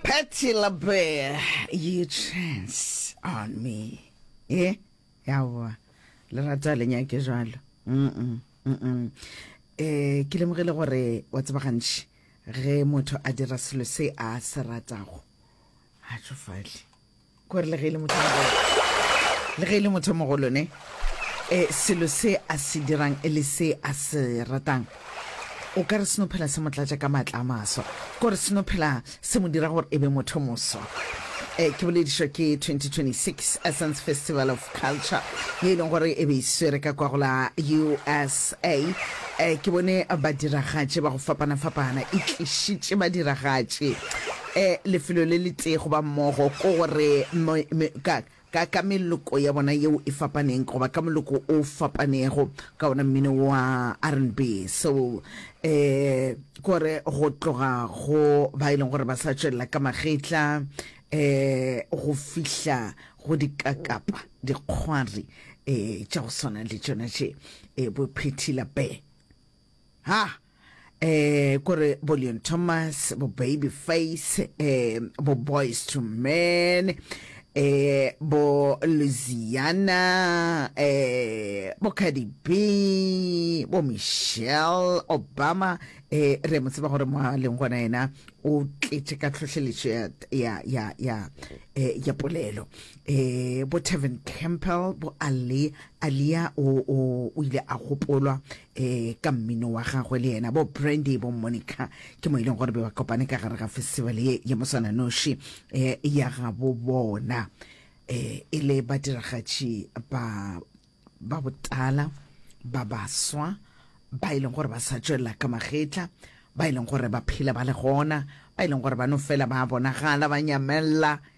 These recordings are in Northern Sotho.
Patty LaBelle, you trance on me. Eh, yawa, le rata le nyake jalo. Mm -mm, mm -mm. Eh, ke lemogile gore wa tseba gantši ge motho a dira selo se a se ratago a tšofale ko re le ge e le motho mogolo le ge e le motho mogolo ne um selo se a se dirang e le se a se ratang o ka re seno phela se mo tlatša ka maatla a maswa ko re seno phela se mo dira gore e be motho moswa um ke boledišwa ke 2026 essence festival of culture ye e leng gore e be e swere ka kwa go la usa um ke bone badiragatše ba go fapana-fapana e tlišitše badiragatše eh, lefelo le letee goba mmogo, ko gore mo, me, ka, ka, ka meloko ya bona yeo e fapaneng goba ka moloko o fapanego ka ona mmino wa rnb soul eh kore go tloga go ba e leng gore ba sa tšwelela ka magetla eh go fihla go dikakapa dikgwari eh tša go swana le tšona tše eh bophethila be ha eh kore bo Leon Thomas bo Baby Face eh bo Boys to Men eh bo Louisiana eh bo Cardi B bo Michelle Obama eh re mo tseba gore mo a leng gona yena o tletše ka tlhohleletšo ya ya ya ya eh, ya polelo eh bo Tevin Campbell bo Ali Alia o o o ile a gopolwa e ka mmino wa gagwe le yena bo Brandy bo Monica ke mo e leng gore be ba kopane ka gare ga festival ye ya mosananoši e ya ga bo bona e e le badiragatši ba ba botala ba baswa ba e leng gore ba sa tšwelela ka magetla ba e leng gore ba phela ba le gona ba e leng gore ba no fela ba bonagala ba nyamella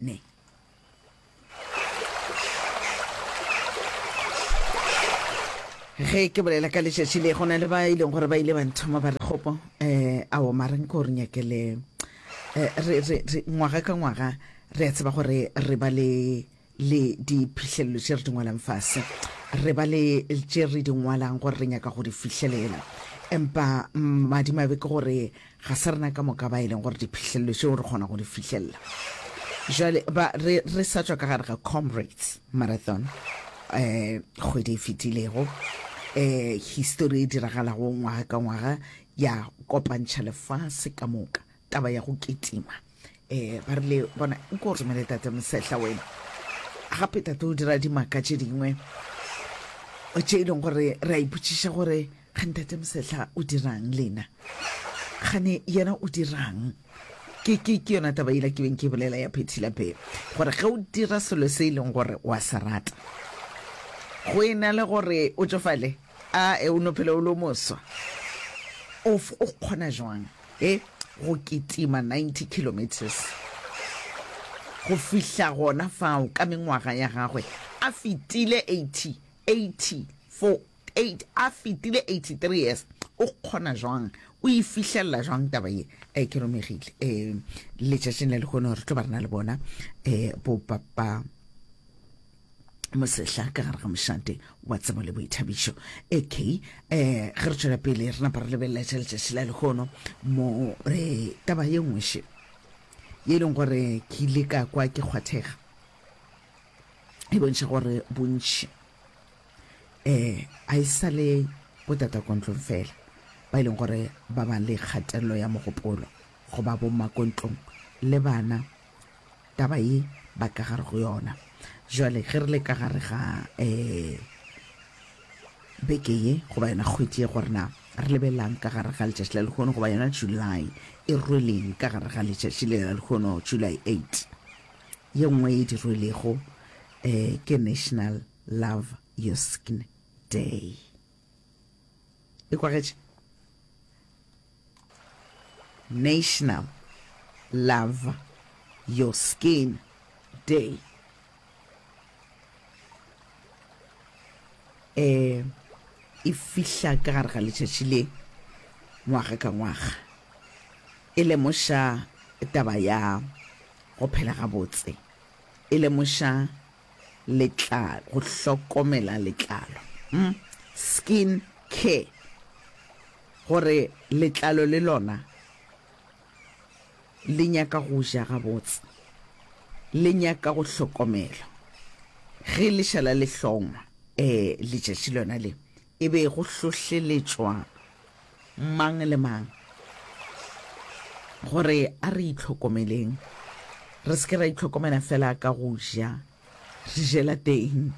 ne ge ke bolela ka letšatši le go na le ba e leng gore ba ile ba nthoma ba re kgopo um eh, ao mareng ko re nyakele um ngwaga ka ngwaga re a tseba gore re ba le le diphihlelelo tše re di ngwalang fase re ba le tše re di ngwalang gore re nyaka go di fihlelela empa madimabe ke gore ga se rena ka moka ba e leng gore diphihlelelo tšeo re kgona go di fihlelela jale ba re re sa tswa ka gare ga comrades marathon eh kgwedi e fetilego eh history e diragalago ngwaga ka ngwaga ya kopantšha lefase ka moka taba ya go ketima um ba rile bona nko o romele tate mosehla wena gape tate o dira dimaka tše dingwe tše e leng gore re a ipotšiša gore ga ntate mosehla o dirang lena gane yena o dirang ke ke ke yona taba ela ke beng ke bolela ya phethilapele gore ge o dira selo se e leng gore wa se rata go e na le gore o tsofale A e o no phela o le o moswa? Of o kgona jwang e go kitima 90 kilometers go fihla gona fao ka mengwaga ya gagwe a fetile 80 80 for 8 a fetile 83 years o kgona jwang o e fihlelela jwang taba ye e ke romegile e letšatšing la lehono re tlo ba rena le bona e bo papa mosehla ka gare ga mošate wa tsebo le boithabišo ak um eh, ge re tšwela pele re napa re lebelela tša letšatši la lekgono mo re taba ye nngweše ye e leng gore ke ile ka kwa ke kgwathega e bontšha gore bontšhi um a e sa le botatakontlong fela ba e leng gore ba ba le kgatelelo ya mogopolo go ba bommakontlong le bana taba ye ba ka gare go yona jwale ge re le ka gare ga um beke ye goba yona kgwedi ye gore na re lebelelang ka gare ga letšatši la lekgono goba yona july e rweleng ka gare ga letšatši le la lekgono july 8 ye nngwe e di rwelego um ke national love your skin day e kwagetše National Love Your Skin Day. E e fihla ka gare ga letšatši le ngwaga ka ngwaga e lemoša taba ya go phela gabotse, e lemoša letlalo, go hlokomela letlalo, mm, skin care, gore letlalo le lona le nyaka go ja gabotse, le nyaka go hlokomelwa. Ge lešala le hlongwa, eh, letšatši lona le, E be go hlohleletšwa mang le mang gore a re itlhokomeleng, re se ke ra itlhokomela fela ka go ja, re jela teng,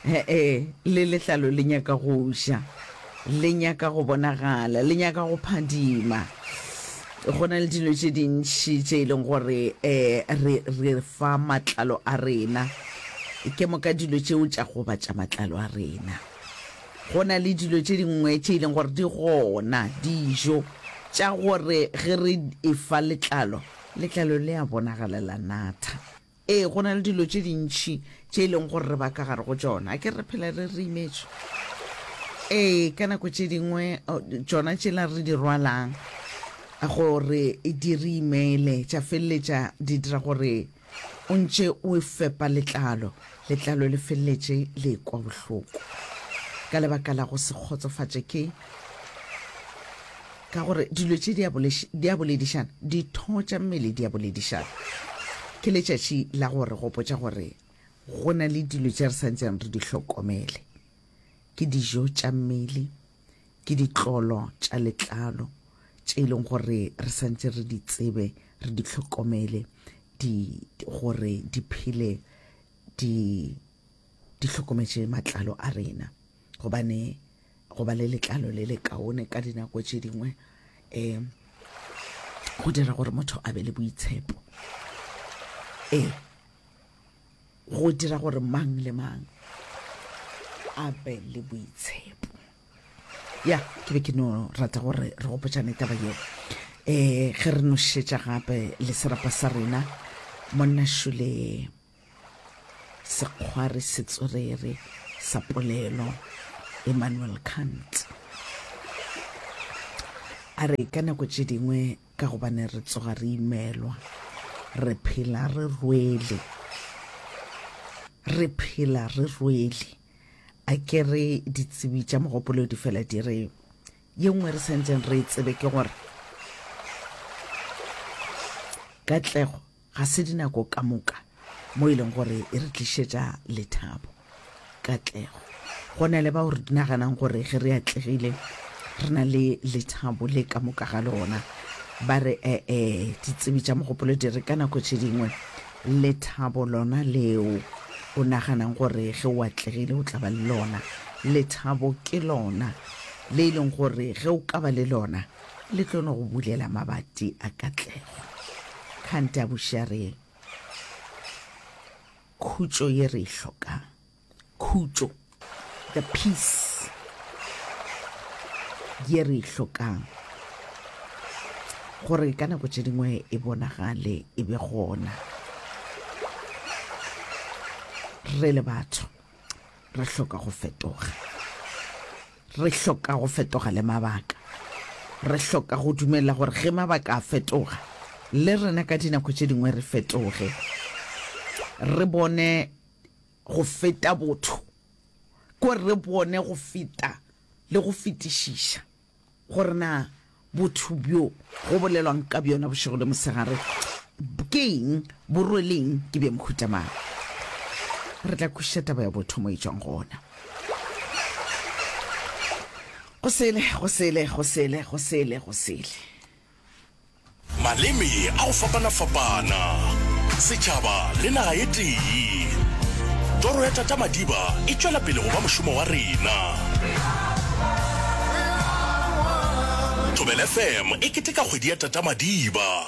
he-e, le letlalo le nyaka go ja, le nyaka go bonagala, le nyaka go phadima. Go na le dilo tše dintši tše e leng gore um re re fa matlalo a rena, ke moka dilo tšeo tša gobatša matlalo a rena. Go na le dilo tše dingwe tše e leng gore di gona, dijo tša gore ge re e fa letlalo, letlalo le a bonagala la natha. Ee, go na le dilo tše dintšhi tše e leng gore re ba ka gare go tšona. A ke re phela re re imetšwe? Ee, ka nako tše dingwe tšona tšela re di rwalang gore di re imele tša feleletša di dira gore O ntše o e fepa letlalo, letlalo le feleletše le ekwa bohloko ka lebaka la go se kgotsofatše ke ka gore dilo tše di a boledišana, ditho tša mmele di a boledišana. Ke letšatši la go re gopotša gore go na le dilo tše re sa ntseng re di hlokomele. Ke dijo tša mmele, ke ditlolo tša letlalo tše e leng gore re santse re di tsebe re di tlhokomele di gore di phele di di tlhokometše matlalo a rena gobane go ba le letlalo le le kaone ka dinako tše dingwe um go dira gore motho a be le boitshepo ee go dira gore mang le mang a be le boitshepo ya ke be ke no rata gore re gopotšane taba yeo um ge re nošetša gape le serapa sa rena monna šule sekgwari setswerere sa polelo emmanuel kant a re ka nako tše dingwe Ka gobane re tsoga re imelwa, re phela re rwele, re phela re rwele. A ke re ditsebi tša mogopolo di fela di re ye nngwe re sentšeng re e tsebe ke gore katlego Ga se dinako ka moka mo e leng gore e re tlišetša lethabo, katlego. Go na le bao re naganang gore ge re atlegile re na le lethabo le ka moka ga lona. Ba re ee, ditsebi tša mogopolo di re ka nako tše dingwe lethabo lona leo o naganang gore ge o atlegile o tla ba le lona, lethabo ke lona le e leng gore ge o ka ba le lona le tlo no go bulela mabati a katlego kgante a bušareng khutšo ye re e hlokang khutšo the peace ye re e hlokang gore ka nako tše dingwe e bonagale e be gona re le batho re hloka go fetoga Re hloka go fetoga le mabaka. Re hloka go dumela gore ge mabaka a fetoga, le rena ka dinako tše dingwe re fetoge, re bone go feta botho, kore re bone go feta le go fetišiša gore na Botho bjo go bolelwang ka bjona bošego le mosegare ke eng? Bo rweleng? Ke bja mohuta mang? Re tla kwešiša taba ya botho mo e tšwang gona. Go sele, go sele, go sele, go sele, go sele. Maleme a go fapana-fapana, setšhaba le naga e tee. Toro ya Tata Madiba e tšwela pele go ba mošomo wa rena. Thobela FM e keteka kgwedi ya Tata Madiba.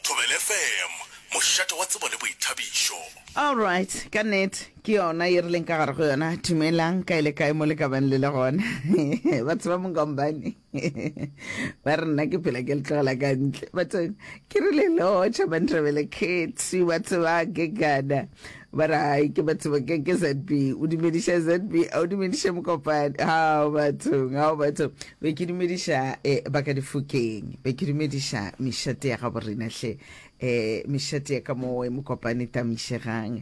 Thobela FM, mošate wa tsebo le boithabišo. Alright, ka nnete ke yona ye re leng ka gare go yona. Dumelang, kae le kae mo le ka bang le le gona. Batho ba Mongombane. ba re nna ke phela ke le tlogela ka ntle batho ke re le lotšha bantrabele kgetsi ba tseba ke kana ba re ai ke ba tseba ke ke zb o dumediša zb a o dumediše mokopane gao bathong gao bathong be ke dumediša um ba ka difokeng be ke dumediša mešate ya gabo rena hle um mešate ya ka mowe mokopane tamišegang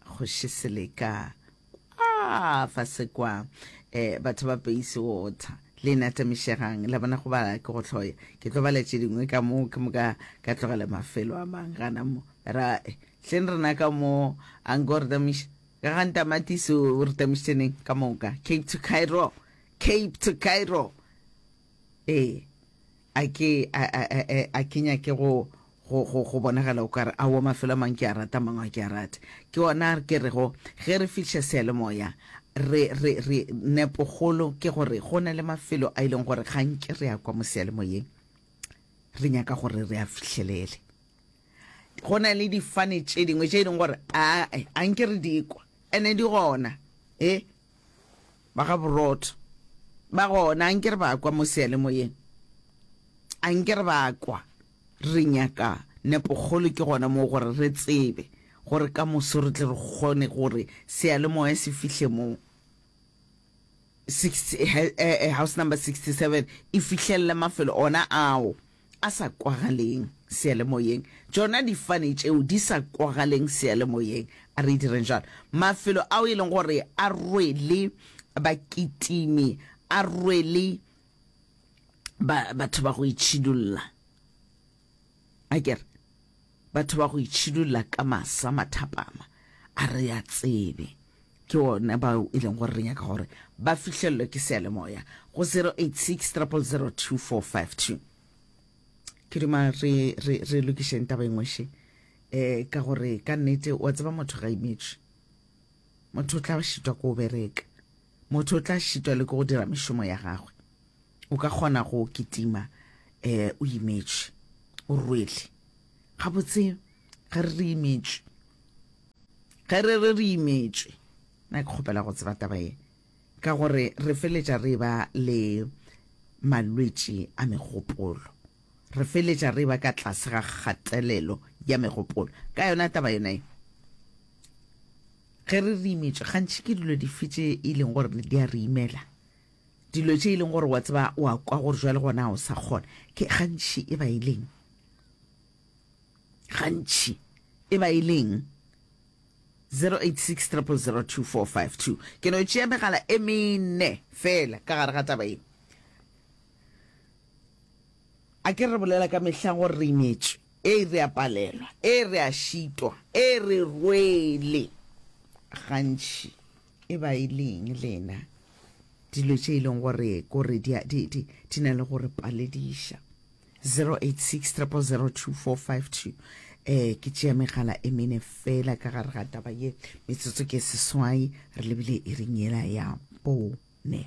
Kgoši Seleka, Kwa fase kwa, eh, batho ba peise wotha, le ena tamišegang, la bona go bala ke go hloya, ke tlo bala tše dingwe ka mo, ke moka ka tlogela mafelo a mang gana mo, ra, eh, hleng rena ka mo, a nko re tamiša, ka ga ntamatisi o re tamišitše neng, ka moka, Cape to Cairo, Cape to Cairo. ee a ke a, a, a, a, a ke nyake go go go go bonagala o kare a wo mafelo a mang ke a rata mang a ke a rate ke ona a ke rego ge re fihle sealemoya re re re nepogolo ke gore go na le mafelo a e leng gore gantši re ya kwa mo sealemoyeng re nyaka gore re a fihlelele go na le difane tše dingwe tše e leng gore a a nke re di kwa ene di gona e ba ga borotho ba gona a nke re ba kwa mo seyalemoyeng a nke re ba kwa re nyaka nepokgolo ke gona moo gore re tsebe gore ka moso re tle re kgone gore seyalemoya se fihle moo eh, eh, house number 67 e fihlelele mafelo ona ao a sa kwagaleng seyalemoyeng, tšona difane tšeo di sa kwagaleng seyalemoyeng, a re direng jalo, mafelo ao e leng gore a rwele bakitimi, a rwele ba, batho ba go itšhidulla, a ke re. Batho ba go itšhidulla ka masa mathapama a re a tsebe, ke one bao e leng gore re nyaka gore ba fihlellwe ke seyalemoya go 086 000 2452. Ke duma re, re, re lokišeng taba engwe še eh, ka gore ka nnete wa tseba motho ga imetšwe motho o tla šitwa ko o bereka motho o tla šitwa le ke go dira mešomo ya gagwe O ka kgona go kitima um o imetše, o rwele. Gabotse ge re re imetše, ge re re re imetše, na ke kgopela go tseba taba ye, ka gore re feletša re ba le malwetši a megopolo, re feletša re ba ka tlase ga kgatelelo ya megopolo ka yona taba yona ye. Ge re re imetše, gantši ke dilo dife tše e leng gore di a re imela? Dilo tše e leng gore wa tseba wa kwa gore jwale gona o sa kgona ke gantši e ba e leng gantši e ba e leng 086 002452 ke no tšea megala e mene fela ka gare ga taba e a ke re bolela ka mehla gore re imetšwe e re a palelwa e re a šitwa e re rwele gantši e ba e leng lena dilo tše e leng gore kore di na le gore palediša 08600242 um eh, ke tšea megala e mene fela ka gare ga taba ye metsotso ke seswai re lebile e ring yela ya bone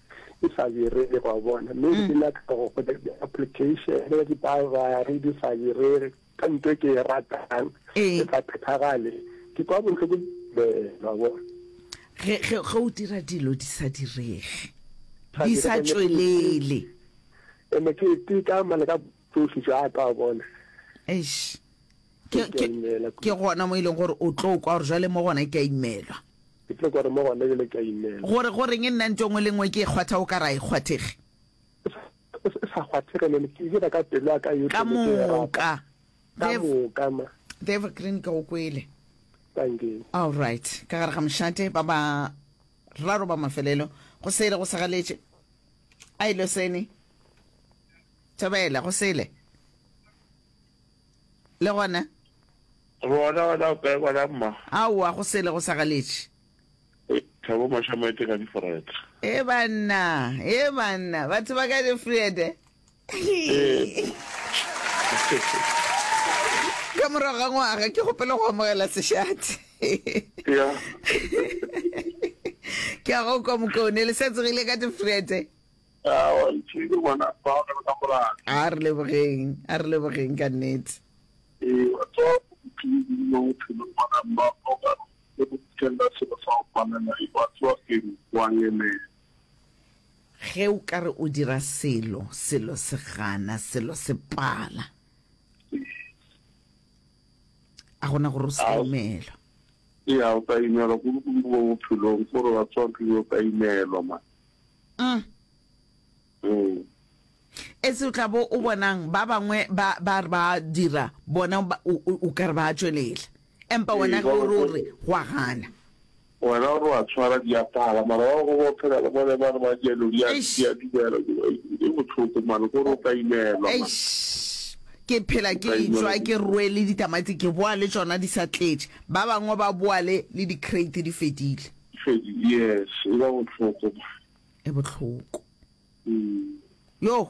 e sa berege wa bona mme mm. ke nyaka go go di-application ya dibagare di sa berege ka nto e ke e ratang e sa phethagale ke kwa botlhoko wa bona ge o dira dilo di sa direge di sa tswelele ene ke teka mane ka Tsohle tša ka wa bona. Eish. Ke, ke, ke gona mo e leng gore o tlo kwa gore jwale mo gona ke a imelwa. Ke tlo gore mo gona jwale ke a imelwa. Gore gore nge nna ntho engwe le engwe ke e kgwatha o ka ra e kgwathege. O sa kgwathege le ke dira ka pelo ya ka yotlhe. Ka moka. Ka moka ma. The Evergreen ka o kwele. Thank you. All right. Ka gare ga mošate ba ba raro ba mafelelo go sele go segaletše a ile sene Thobela, go sele. Le gona? Bona gona o kae gona mma? Aowa, go sele go sa galetše. Thabo maša maete ka difred. E banna, e banna, batho ba ka difred. Ka morago ga ngwaga ke gopele go amogela sešate. Ke a go kwa mokaone le sa tsogile ka difred. A re lebogeng, a re lebogeng ka nnete. Ge o ka re o dira selo, selo se gana, selo se pala. A gona gore o se ka imelwa. Mm. Mm. e se o tla bo o bonang ba bangwe ba ba re ba dira bona ba- o- o o ka re ba tšwelela empa Ee, wena ba ge o re o bangwe- re wa gana wena o re wa tshwara diapala mara ba go ba phela le bone ba re ba jalo di a Eish. di a dumela e botlhoko mane ko re o ka imelwa mane. Eish, ke phela ke Ba e tswa inela ke dijo. rwele ditamati ke boa le tsona di sa tletše ba bangwe ba boa le le di-crate di fedile Kgoši, Yes, e ba bohloko ba. E bohloko. Yoh!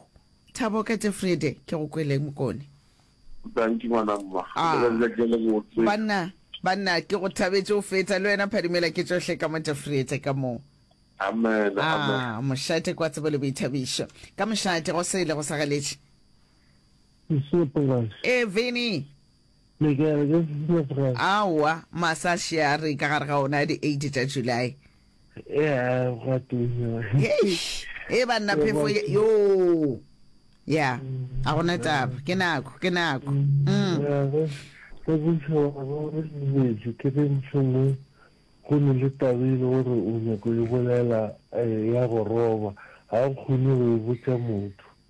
Thabo ka Tefriede, ke go kweleng mokone? Danki ngwana mma. Ah. Letsatsi la ke le botse. Banna, banna, ke go thabetše go feta. Le wena Phadimela ke tšohle ka mo Tefriete ka mo. Amen, amen. Ah, mošate kwa tsebo le boithabišo. Ka mošate, go sele go sa galetše. Ke sepela. Eh, Vinny, Le ke re ke September. Aowa, masaši a re ka gare ga ona a di eight tša July. Ea gwa tunya. Eish, ee banna phefo ye- yoo. Ya, ga gona taba, ke nako, ke nako. Mm. Ea ge ge bošego ga bo re dumetše ke ge mohlomongwe go ne le taba e le gore o nyaka go e bolela, ee, ya go roba, ga o kgone go e botša motho.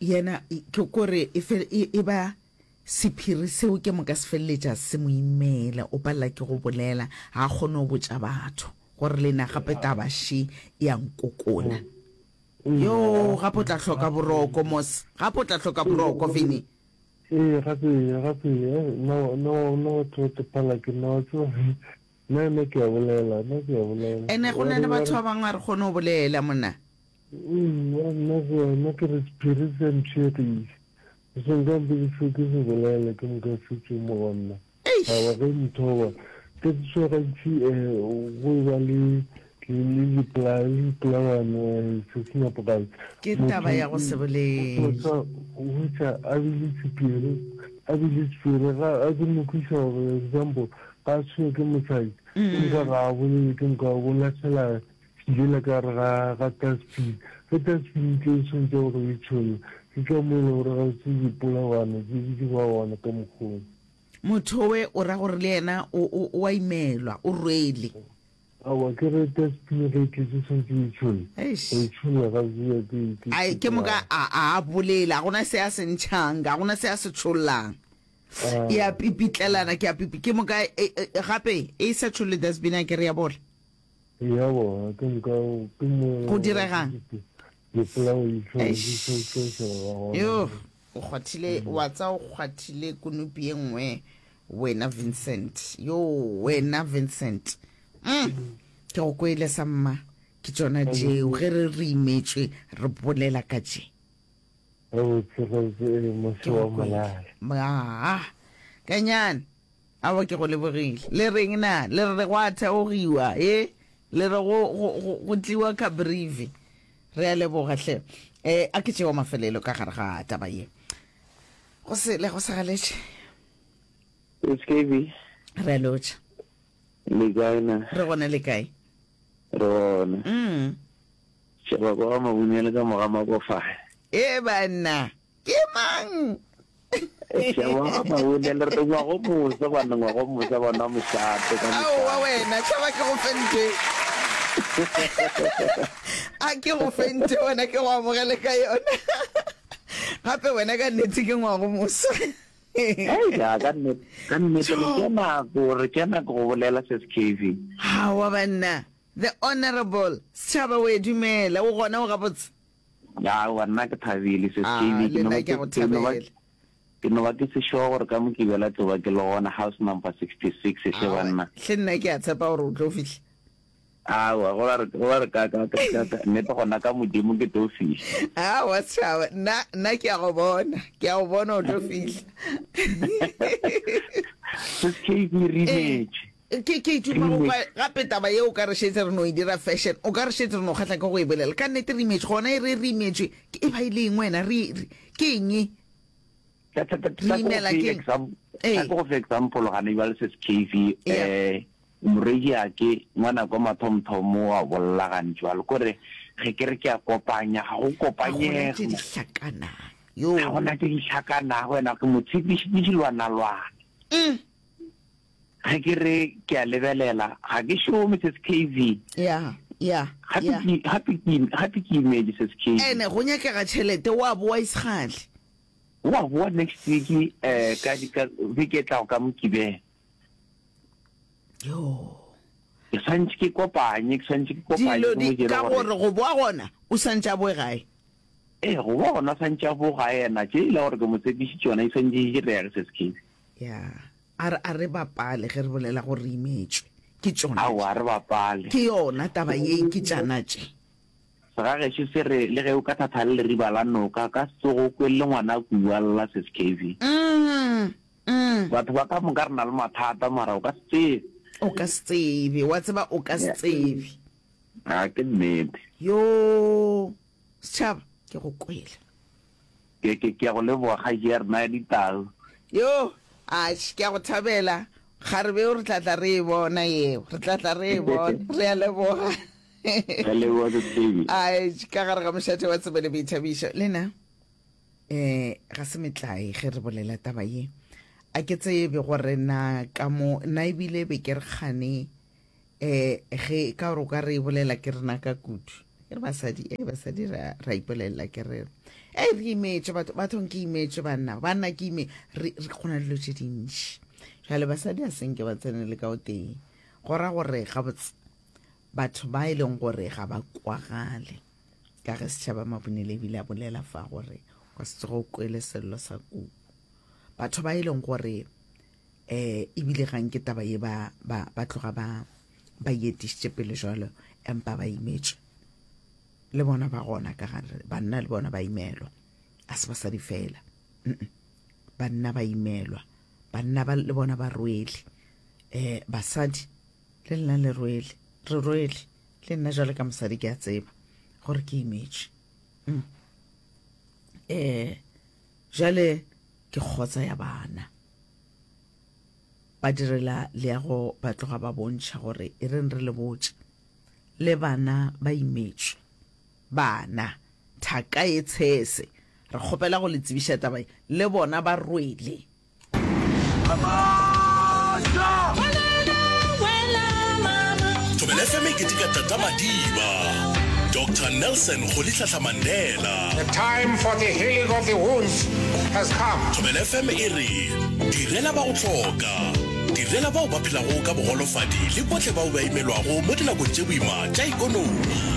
Yena ke kore e, e, e ba sephiri seo ke moka se feleletša se mo imela, o palela ke go bolela, ga a kgone go botša batho gore le na gape taba še e a nkokona. Mm. Yo, gape o tla hloka boroko, Mos. Gape o tla hloka boroko, Vinny. Ee, gape, gape, nna wa tepala ke nna wa tsewa. Nna ke a bolela, nna ke a bolela. Ene go na le batho ba bangwe a re kgone go bolela, monna. Eya, nna go wena ke re sephiri se mpšhegile. O se nka mpedišo ke se bolaela ke moka se tšwe mo go nna. Aowa ge Nthoba, ke tswa gantši um go e ba le lipolawane se se nepogabe. Ke taba ya go se bolele. Hwetša a bile sephiri, a bile sephiri ga a ke mo kwiša gore example ga a tshwenywe ke mosadi, empa ga a bolele ke moka o lahlela Ke ile ka re ga ga Tasbih, ge Tasbih e tlo e swantša gore o e tšhole, ke ka mo e le gore ga o se dipolagwana tše di dirwagwana ka mokgweng. Motho we o ra gore le yena o, o, o a imelwa, o rwele. Aowa, ke re Tasbih ge e tletše swantše o e tšhole, go Eish. e tšholla ga se ya ke ke Ai, ke moka sepolao. a, a a bolela, ga gona se a se ntšhang, ga gona se a se tšhollang. Ah. E a pipitlelana, ke a pipi, ke moka e, e, gape e sa tšholle dasbina ke re ya bola. Go direga'ng? Eish! Yoh! O kgwathile, wa tsa o kgwathile konopi e nngwe wena Vincent. Yoh! Wena Vincent. Umm! Ke go kwele sa mma. Ke tšona tšeo ge re re imetšwe re bolela ka tše. Gabotse, gabotse, ee, mose wa molala. Aa! Kanyane! Aowa ke go lebogile. Le reng na? Le re gwa theogiwa e? Le re go, go, go, go tliwa ka brive? Re a leboga hle. E, a ke tšeo mafelelo ka gare ga taba ye. Go sele, go segaletše. Skv. Re a lotšha. Le kae na? Re gona le kae? Re gona. Mm. Šeba kwa ga Mabunyele ka moga Makofahe. E banna. ke mang ngwago mosa bana ngwago mosa bana mošate ka aowa wena tšhaba ke go fente a ke go fente wena ke go amogele ka yona gape wena ka nnete ke ngwago mosa ka nnete le kena gore kena go bolela se se kv gawa banna the honorable setšhaba o e dumela o gona o gabotse Aowa nna ke thabile sis JB ke no ba ke ke no ba ke no ba ke se sure gore ka mo ke bela tlo ba ke le gona house number 66 e hle banna hle nna ke a tshepa gore o tlo fihla aowa go ba re go ba re ka ka ka ka nnete gona ka modimo ke tlo fihla aowa setšhaba nna nna ke a go bona ke a go bona o tlo fihla sis JB re imetše Ke, ke ituma go kwa gape taba yeo, o ka re šetse re no e dira fashion, o ka re šetse re no kgahla ke go e bolela. Ka nnete re imetšwe, gona e re re imetšwe, ke e ba e le eng wena, re, re, ke eng e? Ta, ta, ta, ta, Re imela ke eng? exam- Ee. ta ke go fe example gane jwale se skv Yeah. um moreki ake ngwana kwa mathomthomo wa bolla gane jwalo kore ge ke re ke a kopanya ga go Ga gona tše kopanyege di hlakanang. Yo. ga gona tse di tlhakanago wena ke mo tshepišitše dilwanalwana Mm. ge ke re ke a lebelela ga ke šome ses kv ya ya ya gape ke imedi ses kv ene go nyakega tšhelete wa boa isgale wa boa next week um ka beke tlago ka mokibela yo ke swantse ke kopanye ke swantse ke kopanye dilo di ka gore go boa gona o swantse a boe gae ee go boa gona o swantse a boe gae ena tše e le gore ke mo tshepišitše yona e swantse e direge se sekele ya A re, A re bapale ge re bolela gore re imetšwe. Ke tšona tše. Aowa, a re bapale. Ke yona taba ye, ke tšana tše. Segagešo se re, le ge o ka thatha le leriba la noka, ka se tsoge o kwelele ngwana a kuwa, lla Ses Cavey. Umm-mm. Batho ba ka moka re na le mathata, mara o ka se tsebe. O ka se tsebe, wa tseba, o ka se tsebe. A ke nnete. Yoo, Setšhaba, ke go kwele. Ke, ke, ke a go leboga, Kgaetšeare, naya ditau. Yoo, atšhe, ke a go thabela. Kgarebe o re tla tla re e bona yeo, re tla tla re e bona. Re a leboga. Re a leboga, Sesi Davey. Atšhe, ka gare ga mošate wa tsebe le boithabišo. Lena, um ga se metlae ge re bolela taba ye. A ke tsebe gore na ka mo, na ebile be ke re kgane, um ge ka gore o ka re e bolela ke rena ka kudu e re basadi e basadi ra ra ipolelela ke re e re imetše batho bathong ke imetše banna banna ke ime re re kgona dilo tše dintši jale basadi a senke ba tsene le ka o teng go ra gore gabotse batho ba e leng gore ga ba kwagale ka ge setšhaba mabonele ebile a bolela fa gore kwa se tsogo o kwele sello sa kuku batho ba e leng gore eh ebile ga nke taba ye ba ba ba tloga ba ba yetišitše pele jalo empa ba imetšwe le bona ba gona ka gare banna le bona ba imelwa a se basadi fela banna ba imelwa banna ba le bona ba rwele eh basadi le lena le rwele re rwele le nna jalo ka mosadi ke a tseba gore ke imetšwe mm. eh jale ke kgotsa ya bana Badirela leago ba tloga ba bontšha gore e reng re le botša. Le bana ba imetšwe. Bana, thaka ye tshese, re kgopela go le tsebiša taba ye, le bona ba rwele. Thobela FM e keteka Tata Madiba, Doctor Nelson Rolihlahla Mandela. The time for the healing of the wounds has come. Thobela FM e re, Direla ba go hloka. Direla bao ba phelago ka bogolofadi le bohle bao ba imelwago mo dinakong tše boima tša ikonomi.